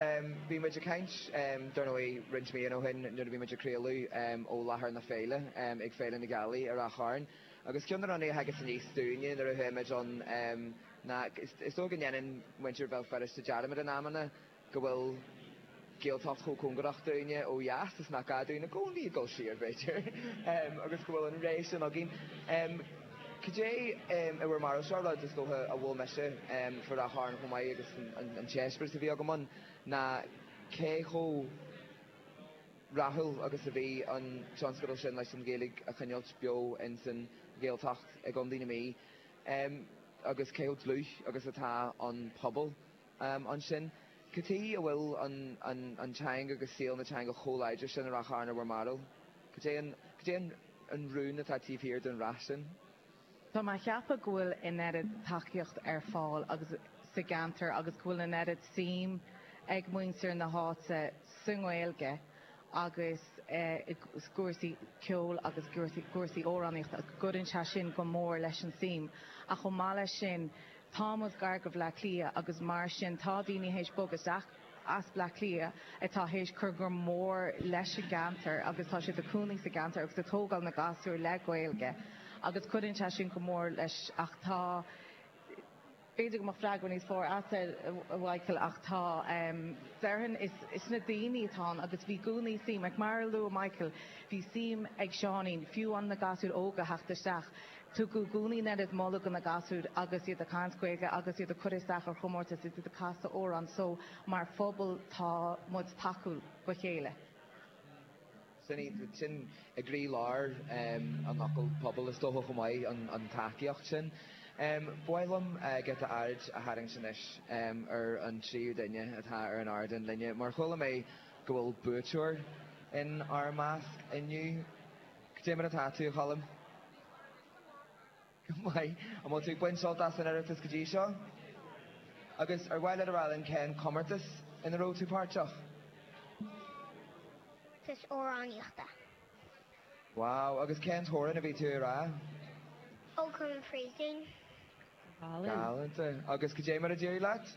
Bhí muid ag caint, dar ndóigh, roinnt míonna ó shin nuair a bhí muid ag craoladh ó láthair na féile ag Féile na Gealaí i Ráth Chairn, agus ceann de na rudaí a thagas aníos dúinne nuair a chuaigh muid ann ná, is dóigh go ndéanann muintir Bhéal Feirste dearmad in amanna go bhfuil Gaeltacht chomh cóngarach dúinne ó dheas is nach gá dúinne i gcónaí dul siar, b'fhéidir, agus go bhfuil an ré sin againn. Cad é in bhur mbarúilse, rud is dócha a bhuail mise faoi Ráth Chairn chomh maith agus an t-eispéireas a bhí agam ann, ná cé chomh rathúil agus a bhí an tionscadal sin leis an Ghaeilge a choinneáilt beo ins an Ghaeltacht i gContae na Mí, agus cé chomh dlúth agus atá an pobal ansin. Cad chuige a bhfuil an teanga agus saol na teanga chomh láidir sin i Ráth Chairn in bhur mbarúil? Cad é an rún atá taobh thiar den rath sin? Tá mé ag ceapadh go bhfuil an oiread tacaíocht ar fáil sa gceantar agus go bhfuil an oiread suim ag muintir na háite sa nGaeilge agus i gcúrsaí ceoil agus i gcúrsaí amhránaíochta, go gcuireann sé sin go mór leis an tsuim. Ach chomh maith leis sin, Tá muid gar do Bhleá Cliath agus mar sin tá daoine théis bogadh isteach as Bleá Cliath atá théis cur go mór leis an gceantar agus tá siad ag cónaí sa gceantar agus ag tógáil na gasúir le Gaeilge agus cuireann sé sin go mór leis ach tá b'fhéidir go mbeadh freagra níos fearr a'tsa a Mhaidhcil ach tá déarfainn is na daoine atá ann agus bhí i gcónaí suim ach mar a luaigh Maidhcil bhí suim ag Seáinín fiú amháin na gasúir óga theacht isteach. Tugadh i gcónaí an oiread moladh do na gasúir agus iad ag caint Gaeilge agus iad ag cur isteach ar chomórtais agus iad ag casadh amhrán so mar phobal tá muid tacúil dhá chéile. Sin í, sin i gcroí-lár an fhocail 'pobal' is dócha chomh maith, an tacaíocht sin. Ba mhaith liom giota aird a tharraingt anois ar an tríú duine atá ar an ardán linne mar chuala mé go bhfuil buaiteoir in ár measc inniu. Go deimhin atá tú, a Choilm. Go maith. An bhfuil tú ag baint sult as an Oireachtas go dtí seo? Agus ar mhaith leat a rá linn cén comórtas ina raibh tú páirteach? comórtas amhránaíochta. Wow, agus cén t-amhrán a bhí tú a rá? Ócam an Phríosúin. Galanta. Agus goidé mar a d'éirigh leat?